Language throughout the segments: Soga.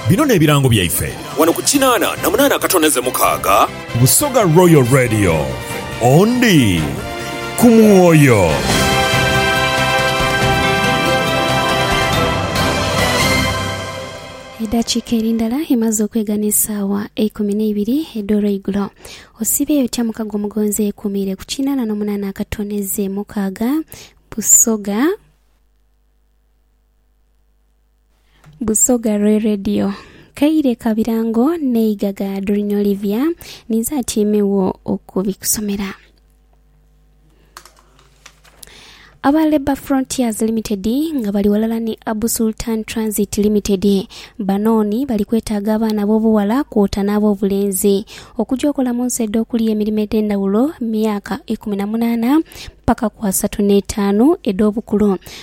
Bino n'ebirango byaife. Wano ku kinaana na munaana akatondeze mukaaga. Busoga Royal Radio, Ondi ku mwoyo. Edhakiika eri ndala emaze okwegha n'esaawa eikumi n'eibiri edh'olweigulo. Osiibye otya mukago omugonzi eyekuumiire ku kinaana n'omunaana akatondeze mukaaga? Busoga. Busoga Roy Radio. Kaire ka birango n'eigaga Doreen Olivia ninze atyeimegho okubikusomera. Aba Labour Frontiers Limited nga bali ghalala ni Abu Sultan Transit Limited banooni bali kwetaaga abaana ab'obughala kwota n'ab'obulenzi okugya okola mu nsi edh'okulya emirimo edh'endhawulo myaka ikumi na munaana paka ku asatu n'etaanu edh'obukulu.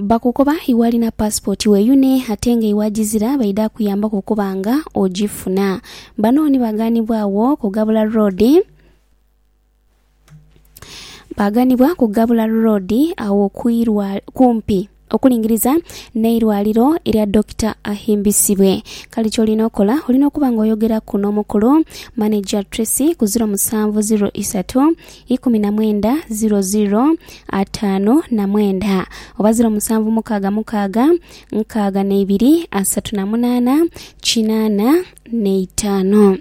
Bakukoba iwe alina passport weyune ate nga iwe agizira baidha kuyambaku okuba nga ogifuna. Bano ni baganibwagho ku Gabula Road baganibwa ku Gabula Road agho kwirwa kumpi okulingiriza n'eirwaliro erya Dokita Ahimbisibwe. Kale kyolina okola olina okuba nga oyogeraku n'omukulu manager Tracy ku ziro musanvu ziro isatu ikumi na mwenda ziro ziro ataano na mwenda oba ziro musanvu mukaaga mukaaga nkaaga na ibiri asatu na munaana kinaana na itaanu.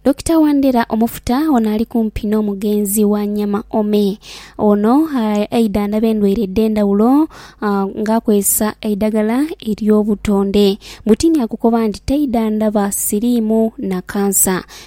Dokita Wandera Omufuta ono ali kumpi n'omugenzi wa Nyama Ome. Ono aidha ndaba endwaire edh'endhawulo nga akozesa eidhagala ery'obutonde. Butiini akukoba nti taidha ndaba siriimu na kansa.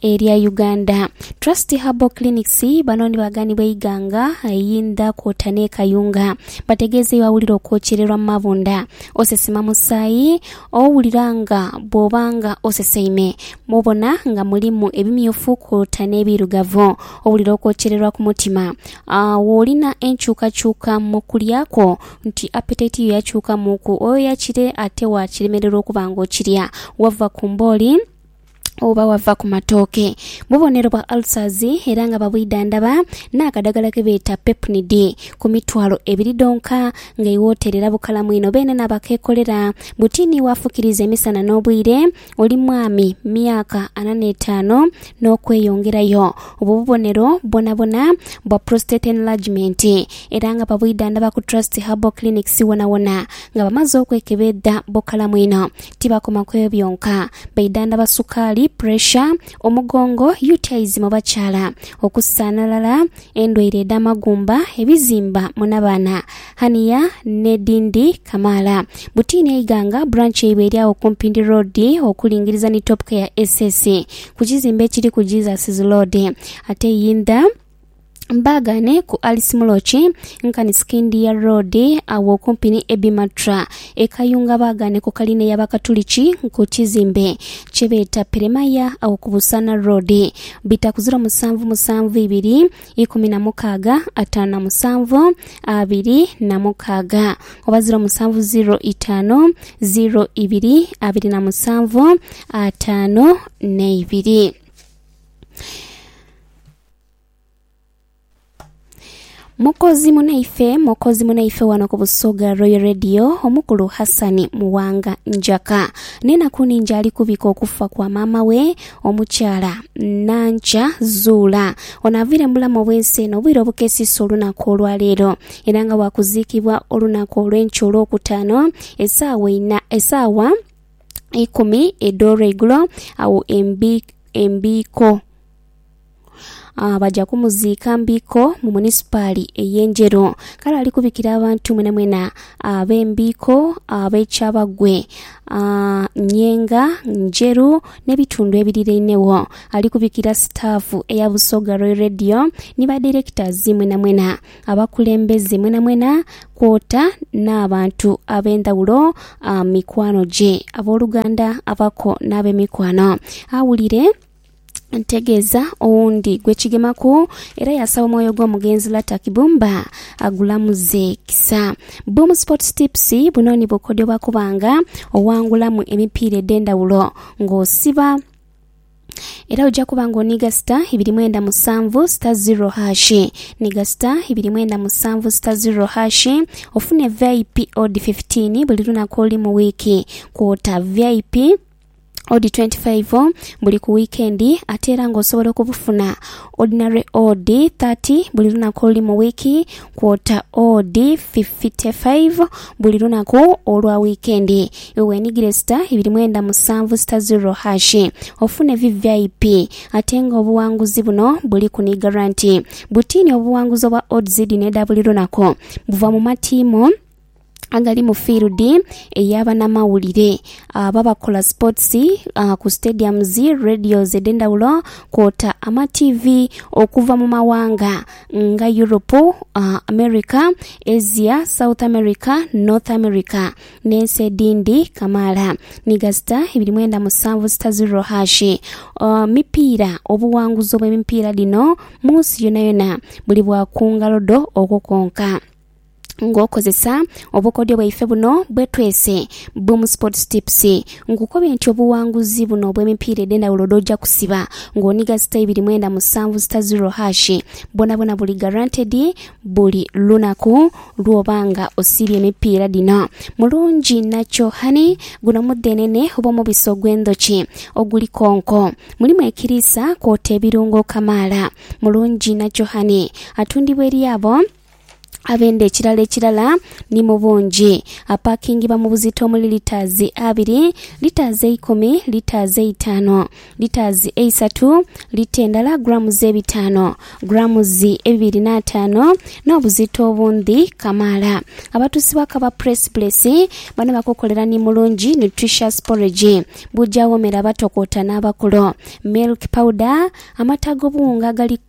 Erya Uganda Trust Herbal Clinics bano ni baghanhi b'eighanga eyindha kwota n'e Kayunga. Bategeeza iwe awulira okwokyererwa mu mabunda, osesema musaayi, owulira nga bw'oba nga oseseime, mw'obona nga mulimu ebimyufu kwota n'ebiirugavu, owulira okwokyererwa ku mutima, w'olina enkyukakyuka mu kulya kwo nti appetite yo yakyukamuuku, oyoya kire ate waakiremererwa okuba nga okirya, wava ku mbooli, oba wava ku matooke. Bubonero bwa ulcers era nga babwidhandhaba n'akadagala ke beeta Pepnid ku mitwalo ebiri dhonka nga iwe oterera bukalamu inho. Beene n'abakeekolera buti ni waafukiriza emisana n'obwire, oli mwami, myaka ana n'etaano n'okweyongerayo. Obwo bubonero bwonabwona bwa prostate enlargement era nga babwidhandhaba ku Trust Herbal Clinics wonawona. Nga bamaze okwekebedha bukalamu inho. Tibakoma ku ebyo byonka, baidhandhaba sukaali, puresha, omugongo, UTIs mu bakyala, okusaanhalala, endwaire edh'amagumba, ebizimba mu nabaana, hernia, n'edhindi kamaala. Butiini Eiganga branch yaibwe eri agho ku Mpindi Road okulingiriza ni Top Care SS ku kizimbe ekiri ku Jesus' Road. Ate Iyindha. Baagaane ku Alice Muloki nkani Sikindiya Road agho okumpi ni Abbey Matra. E Kayunga baagaane ku kalina ey'Abakatuliki ku kizimbe kye beeta Peremaya agho ku Busaana Road. Bita ku ziro musanvu musanvu ibiri ikumi na mukaaga ataanu na musanvu abiri na mukaaga oba ziro musanvu ziro itaanu ziro ibiri abiri na musanvu ataanu n'eibiri. Mukozi munaife mukozi munaife wano ku Busoga Royal Radio omukulu Hassan Muwanga Njaka nenaku ningi ali kubika okufa kwa maama we omukyala Nankya Zuula ono avire mu bulamu obwensi eno obwire obukesisa olunaku olwaleero era nga wakuziikibwa olunaku olwenkya olwokutaano esaawa ina esaawa ikumi edh'olweigulo awo embi embiiko Baja kumuziika Mbiiko mu munisipaali ey'e Njeru. Kale ali kubikira abantu mwenamwena ab'e Mbiiko, ab'e Kyabagwe, Nyenga, Njeru n'ebitundu ebirirainegho. Ali kubikira sitaafu eya Busoga Roy Radio ni badirekitazi mwenamwena, abakulembeze mwenamwena kwota n'abantu ab'endhaghulo, mikwano gye, abooluganda, abako n'abemikwano. Awulire. ntegeeza owundi gwe kigemaku era yasaba omwoyo gw'omugenzi Lata Kibumba agulamuze kisa. Boom Sports Tips, buno ni bukodyo bwa kubanga owangulamu emipiira edh'endhawulo ng'osiba era oja kuba nga oniiga star ibiri mwenda musanvu star zero hash niga star ibiri mwenda musanvu star zero hash ofune vip odi 15 buli lunaku olu mu wiiki kwota vip odi 25 buli ku wiikendi ate era nga osobola okubufuna ordinary odi 30 buli lunaku oluli mu wiiki kwota odi 55 buli lunaku olwa wiikendi. Iwe weenhigire star ibiri mwenda musanvu star ziro hashi ofune VVIP ate nga obuwanguzi buno buliku ni garanti. Bwitiini obuwanguzi obwa odds dhino edha buli lunaku buva mu matiimu. agali mu field eya banamawulire abo abakola sports ku stadiums, radios edhendhawulo kwota ama TV okuva mu mawanga nga Europe, America, Asia, South America, North America n'ensi edhindhi kamaala ni gasita ibiri mwenda musanvu sita ziro hashi mipiira. Obuwanguzi obw'emipiira dhino mu nsi yonayona buli bwa ku ngalo dho okwo kwonka. ng'okozesa obukodyo bwaife buno bwetwese Boom Sports Tips. Nkukobye nti obuwanguzi buno obw'emipiira edh'endhawulo dh'oja kusiba ng'oniga sita ibiri mwenda musanvu sita ziro hash bwonabwona buli guaranteed buli lunaku lw'oba nga osiibye emipiira dhino. Mulungi Natural Honey, Guno mudhenene oba omubisi ogw'endhoki oguli konko. Mulimu ekiriisa kwota ebirungo kamaala. Mulungi Natural Honey atundibwa eri abo. abenda ekirala ekirala ni mu bungi. Apaakingibwa mu buzito omuli litaazi abiri, litaazi eikumi, litaazi eitaanu, litaazi eisatu, lita endala grammes ebitaanu, grammes ebibiri n'ataano, n'obuzito obundhi kamaala. Abatuusi ba Kaba Press Place bano bakukolera ni Mulungi Nutritious Porridge, buugi awoomera abatokoota n'abakulu, milk powder, amata ag'obuwunga agali.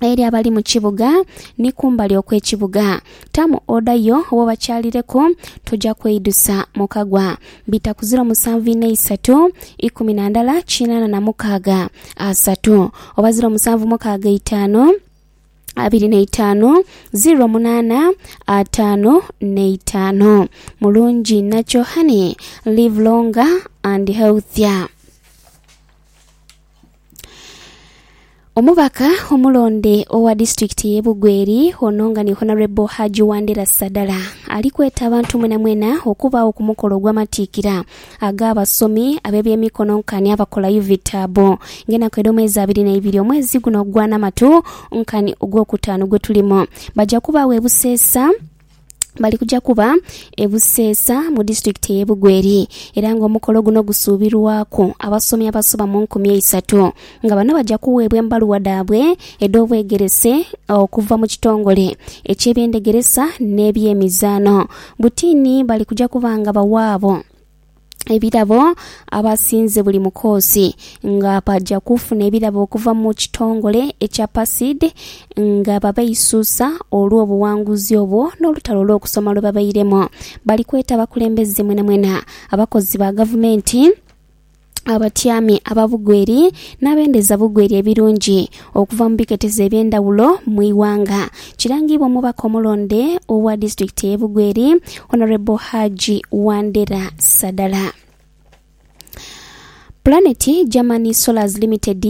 eri abali mu kibuga ni kumbali okw'ekibuga. Tamu oda yo wo bakyalireku, toja kweidusa mu kagwa. Bita ku ziro musanvu inha isatu, ikumi na ndala kinana na mukaaga asatu, oba ziro musanvu mukaaga eitaanu, abiri na itaanu, ziro munana ataanu na itaanu. Mulungi inha kyohani, live longer and healthier. Omubaka omulonde owa disitulikiti ye Bugweri ono nga ni Honourable Haji Wandera Sadala ali kweta abantu mwenamwena okubaagho ku mukolo ogw'amatiikira ag'abasomi ab'ebyemikono nkani abakola UVITA abo ng'enaku edh'omwezi abiri n'eibiri omwezi guno ogwanamatu nkani ogw'okutaanu gwetulimu baja kubaagho e Buseesa bali kuja kuba e Buseesa mu disitulikiti eye Bugweri era nga omukolo guno gusuubirwaku abasomi abasoba mu nkumi eisatu nga bano baja kuweebwa embaluwa dhaabwe edh'obwegerese okuva mu kitongole eky'ebyendegeresa n'ebyemizaano. Butiini bali kuja kuba nga bawaabo. ebirabo abasinze buli mukoosi nga baja kufuna ebirabo okuva mu kitongole ekya PACID nga babeisusa olw'obuwanguzi obwo n'olutalo olw'okusoma lwebabairemu. Bali kweta abakulembeze mwenamwena, abakozi ba gavumenti, abatyami ababugweri n'abendeza bugweri ebirungi Okuva mu biketezo eby'endhawulo mu ighanga, kirangiibwa omubaka omulonde owa disitulikiti eye Bugweri Honourable Hajji Wandera Sadala. Planet Germany Solars Limited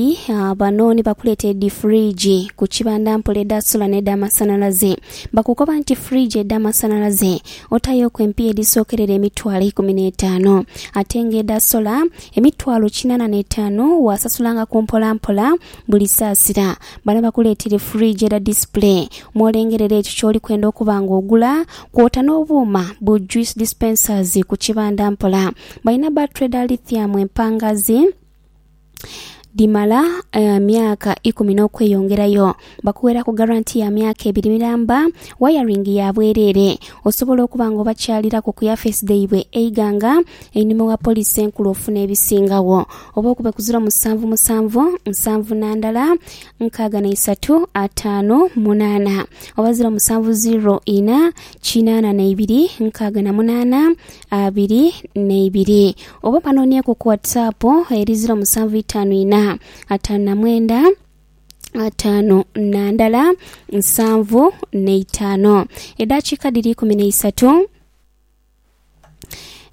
bano ni bakuleeta edhi fridge ku kibanda mpola edha solar n'edha masanhalaze. Bakukoba nti fridge edha masanhalaze otaayoku empiiya edhisookerera emitwalo eikumi n'etaanu ate nga edha solar Emitwalo kinana n'etaanu waasasulangako mpola mpola buli saasira. Bano bakuleeteire fridge era display mw'olengerera ekyo ky'oli kwenda okuba nga ogula kwota n'obuuma bu juice dispensers ku kibanda mpola. Balina battery dha lithium empangaazi Dhimala emyaka ikumi n'okweyongerayo. Bakughera ku garanti ya myaka ebiri miramba, wayaringi ya bwereere. Osobola okuba nga obakyaliraku ku yafeesi dhaibwe eighanga einhuma ewa Poliisi Enkulu ofuna ebisingagho. Oba okube ku ziro musanvu musanvu nsanvu na ndala nkaaga na isatu ataanu munaana oba ziro musanvu ziro ina kinaana na ibiri nkaaga na munaana. abiri na ibiri oba banonieku ku WhatsApp eri ziro musanvu itaanu ina ataanu na mwenda ataano na ndala nsanvu n'eitaano edaakiika dhiri ikumi n'eisatu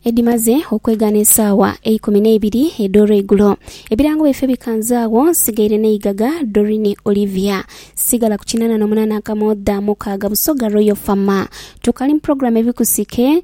edimaze okwegaana esaawa eikumi n'eibiri edh'olweigulo ebirango byaife bikanze agho nsigaire n'eigaga Dorine Olivia sigala ku kinana n'omunana akamoodha mukaaga Busoga Royal Fama tukali mu program ebikusike